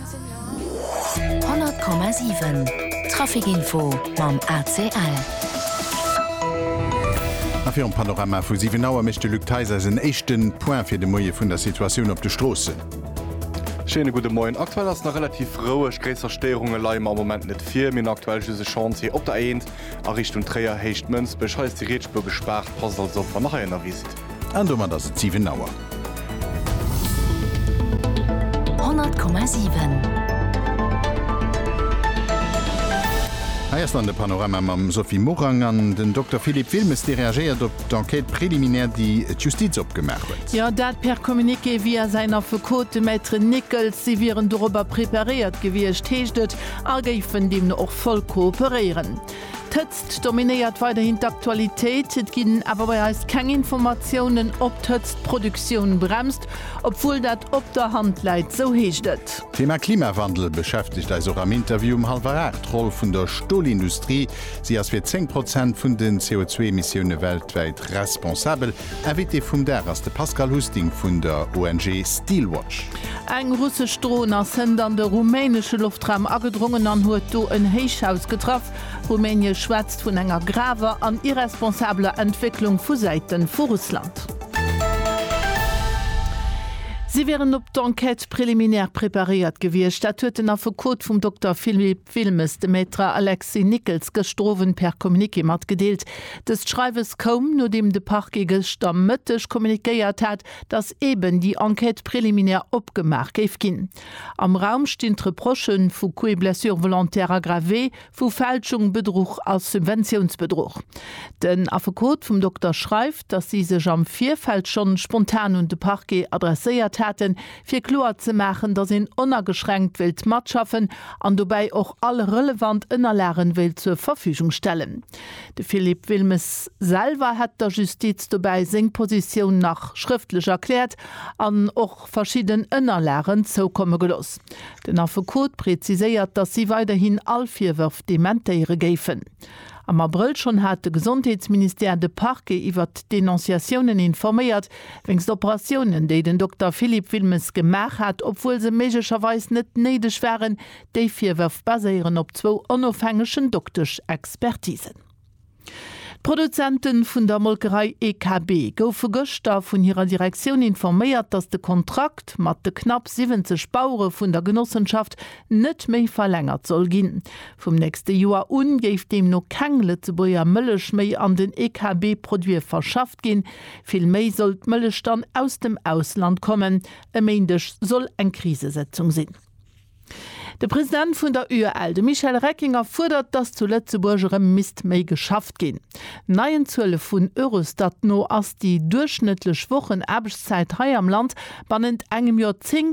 100,7 Trafic Info mam ACL. A virum Panorama vu 7 Auer mécht de Luc Theis eis en éischte Point fir de Moie vun der Situatioun op de Stroossen. Schéine gudde Moien. Aktuell ass et nach relativ roueg, gréisser Stéierunge leie mer am Moment net vir. Mir hunn aktuell just e Chantier op der A1 a Richtung Tréier, Héicht Mënsbech. Hei ass déi Rietspuer gespaart, passt also op wann der hei ënnerwee sidd. An domat ass et 7 Auer. 100,7. Hei ass dann de Panorama mam Sophie Morang an den Dokter Philippe Wilmes, dee reagéiert op d'Enquête préliminaire, déi d'Justiz opgemaach huet. Jo, dat per Communiqué via säin Affekot, de Maître Nickel. Si wieren dorobber preparéiert gewiescht, heescht et, a géifen deemno och voll kooperéieren. D'Hëtzt dominéiert weiderhin d'Aktualitéit. Et ginn awer bei eis keng Informatiounen, ob d'Hëtzt d'Produktioun bremst, obwuel dat op der Hand läit, sou heescht et. D'Thema Klimawandel beschäftegt eis och am Interview um hallwer aacht. D'Roll vun der Stolindustrie, Si ass fir 10 Prozent vun den CO2-Emissioune weltwäit responsabel. Invité vum Dag ass de Pascal Husting vun der ONG Steelwatch. Eng russesch Dron ass hënt an de rumänesche Loftraum agedrongen an huet do en Héichhaus getraff. Rumänie schwätzt vun enger graver an irresponsabeler Entwécklung vu Säite vu Russland. Si wieren op d'Enquête préliminaire preparéiert gewiescht. Dat huet den Affekot vum Dokter Philippe. Filmesdemaître Alexis Nickels gëschter Owend per Communiqué matgedeelt. Dëst Schreiwes koum, nodeem de Parquet gëschter Mëtteg kommuniquéiert hat, datt eeben déi Enquête préliminaire opgemaach géif ginn. Am Raum stinn d'Reprochë vu Coups et blessures volontaires aggravés, vu Fälschung, Bedruch a Subventiounsbedruch. Den Affekot vum Dokter schreift, datt si sech am Virfeld schonn spontan un de Parquet adresséiert haten, fir kloer ze maachen, dass een onageschränkt wéilt matschaffen an dobäi och all relevant Ënnerlagen wéilt zur Verfügung stellen. De Philippe Wilmes selwer hätt der Justiz dobäi seng Positioun nach schrëftlech erkläert an och verschidden Ënnerlagen zoukomme gelooss. Den Affekot preziséiert, dass si weiderhin all Virwërf dementéiere géifen. Am Abrëll schonn hat de Gesondheetsministère de Parquet iwwert d'Denonciatiounen informéiert, wéinst Operatiounen, déi den Dokter Philippe Wilmes gemaach hat, obwuel se méiglecherweis net néideg waren. Déi Virwërf baséieren op zwou onofhängegen Doktesch-Expertisen. D'Produzente vun der Molkerei EKB goufe gëschter vun hirer Direktioun informéiert, datt de Kontrakt mat de knapp 70 Bauere vun der Genossenschaft net méi verlängert soll ginn. Vum nächste Joer u géif deemno keng Lëtzebuerger Mëllech méi an den EKB-Produite verschafft ginn. Villméi soll d'Mëllech dann aus dem Ausland kommen. E Méindeg soll eng Krisesëtzung sinn. De President vun der UEL, de Michel Reckinger, fuerdert, datt zu Lëtzebuerg erëm misst méi geschafft ginn. Neien Zuele vun Eurostat no ass déi duerchschnëttlech Wochenaarbechtszäit hei am Land bannent engem Joer 10.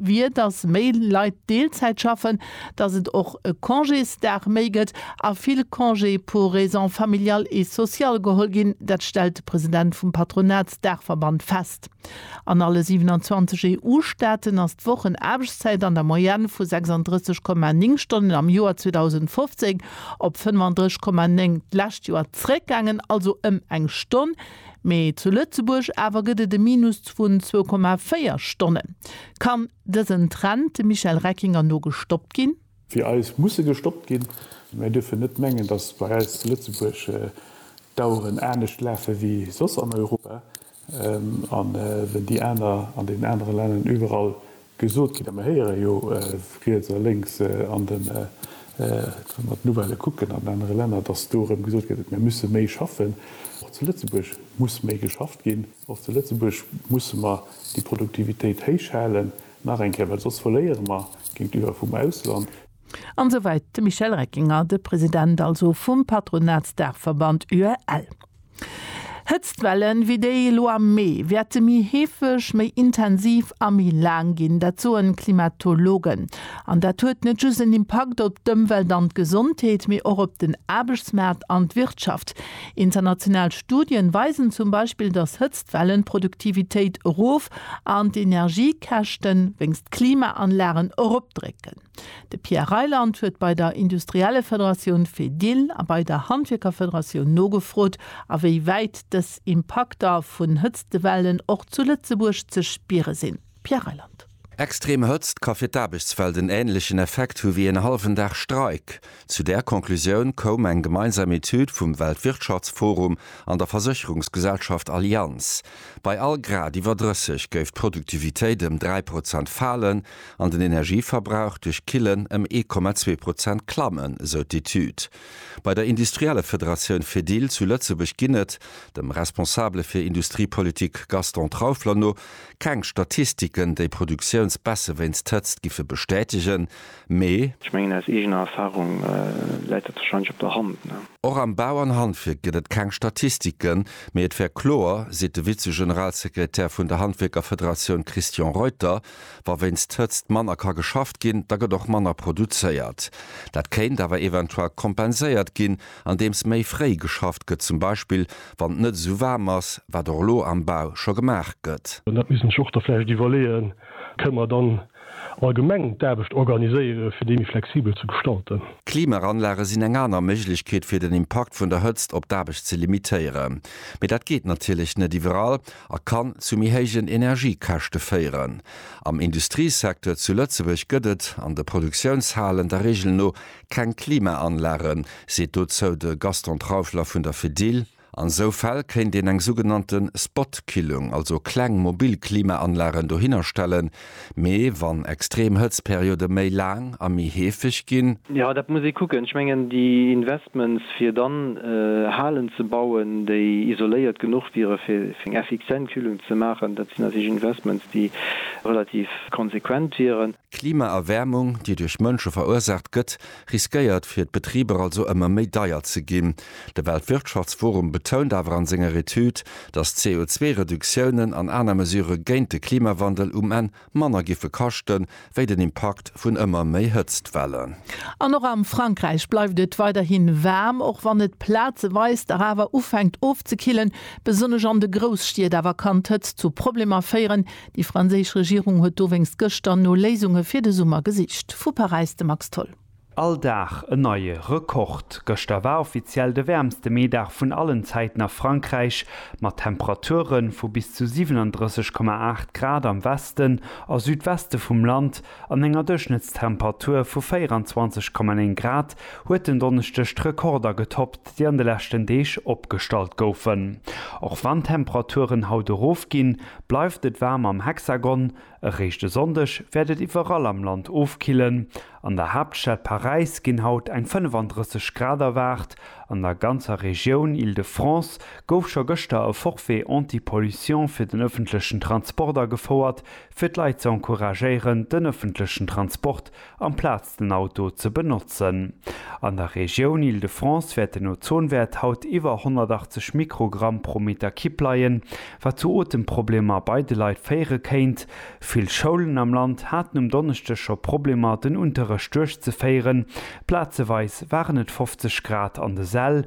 wier, datt méi Leit Deelzäit schaffen, datt et och e Congésdag méi gëtt a vill Congé pour raisons familiales et sociales geholl ginn. Dat stellt de President vum Patronatsdaachverband fest. An alle 27 EU-Staaten ass d'Wochenaarbechtszäit an der Moyenne vu 36,9 Stonnen am Joer 2015 op 35,9 d'lescht Joer zeréckgaangen, also ëm eng Stonn. Mee zu Lëtzebuerg awer gëtt et e Minus vun 2,4 Stonnen. Kann dësen Trend dem Michel Reckinger no gestoppt ginn? Fir eis muss e gestoppt ginn. Mir dierfen net mengen, datt bei eis zu Lëtzebuerg d'Aueren anescht lafe wéi soss an Europa. An wéi déi aner an deenen anere Länner iwwerall Gesot ginn a mir héieren jo riets a lénks an den, wa mer d'Nouvellë kucken an anere Länner, datt do erëm gesot gëtt, mir musse méi schaffen. Och zu Lëtzebuerg muss méi geschafft ginn. Och zu Lëtzebuerg musse mer déi Produktivitéit héich halen, nach eng Kéier, well soss verléiere mer géintiwwer vum Ausland. An esou weit de Michel Reckinger, de President also vum Patronatsdaachverband UEL. Hëtztwellen wéi déi elo am Mee wäerte méi heefeg, méi intensiv a méi laang ginn, dat soen d'Klimatologen. An dat huet net just en Impakt op d'Ëmwelt an d'Gesondheet, mee och op den Aarbechtsmaart an d'Wirtschaft. International Studien weisen zum Beispill, dass Hëtztwellen d'Produktivitéit erof an d'Energiekäschten wéinst Klimaanlagen eropdrécken. De Pierre Reyland huet bei der Industriellefederatioun Fedil a bei der Handwierkerfederatioun nogefrot, a wéi wäit dës Impakter vun Hëtztewellen och zu Lëtzebuerg ze spiere sinn. Pierre Reyland. Extrem Hëtzt ka fir d'Aarbechtswelt en änlechen Effekt hu wéi een hallwen Dag Streik. Zu där Conclusioun koum eng gemeinsam Etüd vum Weltwirtschaftsforum an der Versécherungsgesellschaft Allianz. Bei all Grad iwwer 30 géif d'Produktivitéit ëm 3 Prozent falen an den Energieverbrauch duerch Killen ëm 1,2 Prozent klammen, esou d'Etüd. Bei der Industriellefederatioun Fedil zu Lëtzebuerg ginn et, dem Responsabele fir Industriepolitik Gaston Trauffler no, keng Statistiken, déi Produktiounsbässe wéinst Hëtzt giffe bestätegen. Mee. Ech mengen, aus eegener Erfahrung läit dat wahrscheinlech op der Hand. Och am Bau an Handwierk gëtt et keng Statistiken, mee et wär kloer, seet de Vize-Generalsekretär vun der Handwierkerfederatioun Christian Reuter, Wa wéinst d'Hëtzt manner ka geschafft ginn, da gëtt och manner produzéiert. Dat kéint awer eventuell kompenséiert ginn, andeems méi fréi geschafft gëtt, zum Beispill wann et net esou waarm ass, wat och elo am Bau scho gemaach gëtt. Dat misst een sech och da vläicht iwwerleeën. Kënne mer dann allgemeng d'Aarbecht organiséieren, fir déi méi flexibel ze gestalten. Klimaranlage sinn eng aner Méiglechkeet, fir den Impakt vun der Hëtzt op d'Aarbecht ze limitéieren. Mee dat geet natierlech net iwwerall a kann zu méi héijen Energiekäschte féieren. Am Industriesecteur zu Lëtzebuerg gëtt et an de Produktiounshalen der Reegel no keng Klimaanlagen, seet dozou de Gaston Trauschler vun der Fedil. An esou Fäll kéint een eng sougenannte Spotkillung, also kleng mobil Klimaanlagen dohinner stellen. Mee wann extrem Hëtztperiode méi laang a méi heefeg ginn? Jo, dat muss ee kucken. Ech mengen, déi Investments, fir dann Halen ze bauen, déi isoléiert genuch wiere fir eng effizient Kühlung ze maachen, dat sinn natierlech Investments, déi relativ konsequent wieren. Klimaerwäermung, déi duerch Mënsche verursaacht gëtt, riskéiert fir d'Betriber also ëmmer méi deier ze ginn. De Weltwirtschaftsforum betount awer an senger Etüd, datt CO2-Reduktiounen an aner Mesurë géint de Klimawandel um Enn manner giffe kaschten, wéi den Impakt vun ëmmer méi Hëtztwellen. An och am Frankräich bleift et weiderhin waarm, och wann et plazeweis dach awer ufänkt ofzekillen. Besonnesch an de Grousstied awer kann d'Hëtzt zu Problemer féieren, Déi franséisch Regierung huet dowéinst gëschter no Léisunge fir de Summer gesicht. Vu Paräis de Max Tholl. All Dag en neie Rekord. Gëschter war offiziell de wäermste Meedag vun allen Zäiten a Frankräich, mat Temperature vu bis zu 37,8 Grad am Westen a Südweste vum Land, An enger Duerchschnëttstemperatur vu 24,9 Grad huet en Donneschdeg d'Rekorder getoppt, déi an de leschten Deeg opgestallt goufen. Och wann d'Temperaturen haut erofginn, bleift et waarm am Hexagon. Eréischt e Sonndeg wäert et iwwerall am Land ofkillen. An der Haaptstad Paräis ginn haut eng 35 Grad erwaart. An der ganzer Regioun Île-de-France gouf scho gëschter e Forfait anti-pollution fir den ëffentlechen Transport agefouert, fir d'Leit ze encouragéieren, den ëffentlechen Transport amplaz den Auto ze benotzen. An der Regioun Île-de-France wäert den Ozonwäert haut iwwer 180 Mikrogramm pro Meter Kipp leien, wat zu Otemproblemer bei de Leit féiere kéint. Vill Schoulen am Land haten um Donneschdeg scho Problemer, den Unterrecht duerchzeféieren. Plazeweis waren et 50 Grad an de Säll.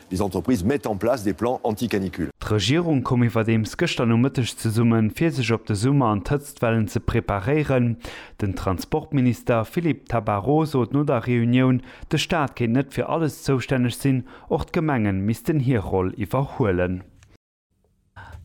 Les entreprises mettent en place des plans anti-canicule. D'Regierung koum iwwerdeems gëschter Nomëtteg zesummen, fir sech op de Summer an d'Hëtztwellen ze preparéieren. Den Transportminister Philippe Tabarot sot no der Reunioun, de Staat kéint net fir alles zoustänneg sinn, och d'Gemenge missten hir Roll iwwerhuelen.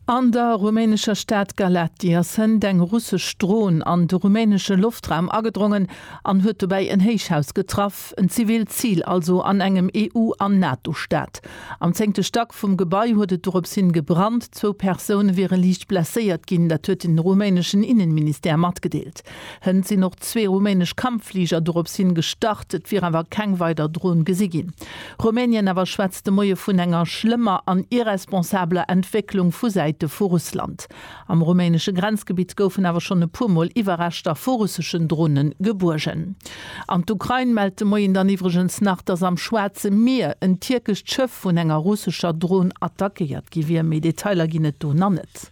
An der rumänescher Stad Galaţi ass hënt eng russesch Dron an de rumänesche Loftraum agedrongen an huet dobäi en Héichhaus getraff, en zivilt Zil also an engem EU an NATO-Staat. Am zéngte Stack vum Gebai huet et dorops hin gebrannt. Zwou Persoune wiere liicht blesséiert ginn, dat huet den rumäneschen Innenministère matgedeelt. Hënt sinn och zwee rumänesch Kampffliger dorops hin gestart, et wier awer keng weider Dron gesi ginn. Rumänien awer schwätzt de Moie vun enger schlëmmer an irresponsabeler Entwécklung vu Säite vu Russland. Am rumänesche Grenzgebitt goufen awer schonn e puer Mol Iwwerreschter vu russeschen Drone gebuergen. An d'Ukrain mellt de Moien dann iwwregens nach, datt am Schwaarze Mier en tierkescht Schëff vun enger russescher Dron attackéiert gi wier. Méi Detailer ginn et do nach net.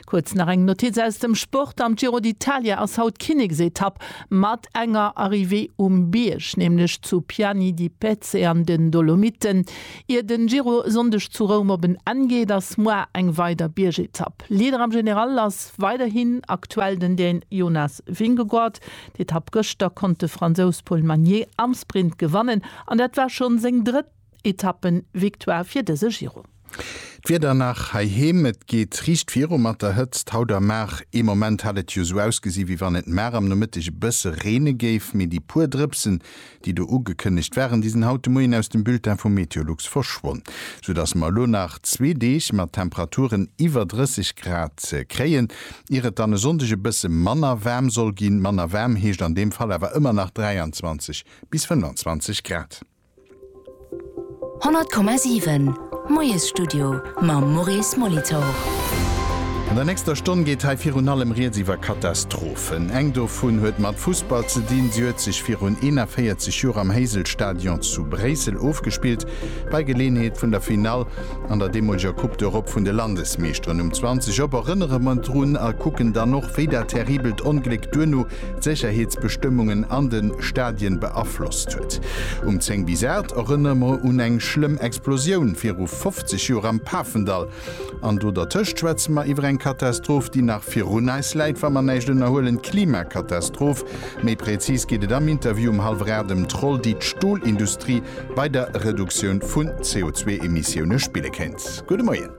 Kuerz nach eng Notiz aus dem Sport, Am Giro d'Italia ass haut d'Kinneksetapp mat enger Arrivée um Bierg, nämlech zu Piani di Pezze an den Dolomiten. Ier den Giro e Sonndeg zu Roum op en Enn geet, ass moar eng weider Biergetapp. Leader am General ass weiderhin aktuell den Dän Jonas Vingegaard. D'Etapp gëschter konnt de Fransous Paul Magnier am Sprint gewannen an dat war schonn seng drëtt. Etappen-Victoire fir dëse Giro. D'Wieder nach heiheem, Et geet riicht viru mat der Hëtzt haut a mar. Ee Moment hat et jo esou ausgesi wéi wann et mar am Nomëtteg e bësse reene géif, mee déi puer Drëpsen, déi do ugekënnegt waren, déi sinn haut de Moien aus dem Bulletin vu Meteolux verschwonn. Sou dass mer elo nach zwee Deeg mat Temperaturen iwwer 30 Grad ze kréien, ier et dann e Sonndeg e bësse manner waarm soll ginn. Manner waarm heescht an deem Fall awer ëmmer nach 23 bis 25 Grad. 100,7 Moiesstudio mam Maurice Molitor. An der nächster Stonn geet hei virun allem rieds iwwer Katastrophen. Eng dovun huet mat Fussball ze dinn. Si huet sech virun 41 Joer am Heysel-Stadion zu Bréissel ofgespillt, bei Geleeënheet vun der Finall an der deemoleger Coupe d'Europe vun de Landesmeeschteren um 20 op. Erënnere mer drun a kucken dann och, wéi dat terribelt Ongléck duerno d'Sécherheetsbestëmmungen an de Stadien beaflosst huet. Um 10 bis 8 erënnere mer un eng schlëmm Explosioun viru 50 Joer am Pafendall. An do dertëscht schwätze mer iwwer eng Katastroph, déi nach virun eis läit, wa mer näischt ënnerhuelen, d'Klimakatastroph. Méi prezis geet et am Interview um hallwer 8 ëm d'Roll, déi d'Stolindustrie bei der Reduktioun vun CO2-Emissioune spille kéint. Gudde Moien.